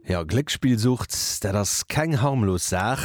Jo, Gléckspillsucht, dat ass keng harmlos Saach.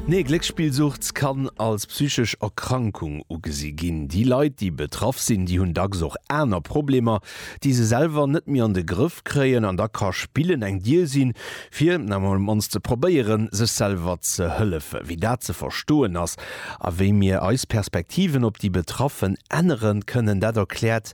Nee, Gléckspillsucht kann als psychesch Erkrankung ugesi ginn. Déi Leit, déi betraff sinn, déi hunn dacks och aner Problemer, déi se selwer net méi an de Grëff kréien. An da ka Spillen eng Dier sinn, fir emol am mannst ze probéieren, sech selwer ze hëllefen. Wéi dat ze verstoen ass a wéi mir eis Perspektiven op déi Betraffen ännere kënnen, dat erkläert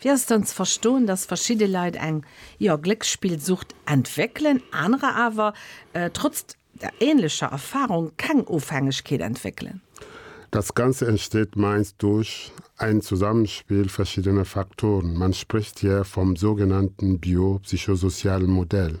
Wéi ass dann ze verstoen, dass verschidde Leit eng, jo, Glécksspillsucht entwéckelen, anerer awer trotz der ähnlecher Erfahrung keng Ofhängegkeet entwéckelen? Das Ganze entsteht meist durch ein Zusammenspiel verschiedener Faktoren, man spricht hier vom sogenannten biopsychosozialen Modell.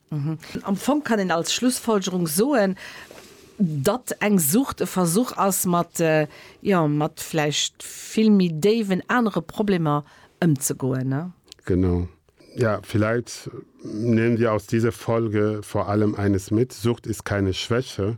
Am Fong kann een als Schlussfolgerung soen, datt eng Sucht e Versuch ass, mat, jo, mat vläicht vill méi déiwen anere Problemer ëmzegoen. Genau. Ja, vielleicht nehmen wir aus dieser Folge vor allem eines mit, Sucht ist keine Schwäche,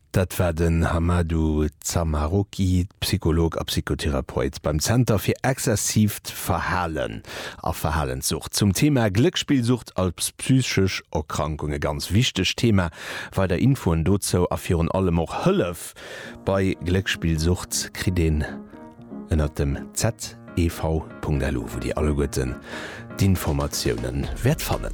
Dat war den Hamadou Zamaroki, Psycholog a Psychotherapeut beim Zenter fir exzessiivt Verhalen a Verhalenssucht, zum Thema Gléckspillsucht als psychesch Erkrankung. E ganz wichtegt Thema. Weider Infoen dozou a virun allem och Hëllef bei Gléckspillsucht kritt een ënnert dem zev.lu, wou Dir alleguerten d'Informatiounen wäert fannen.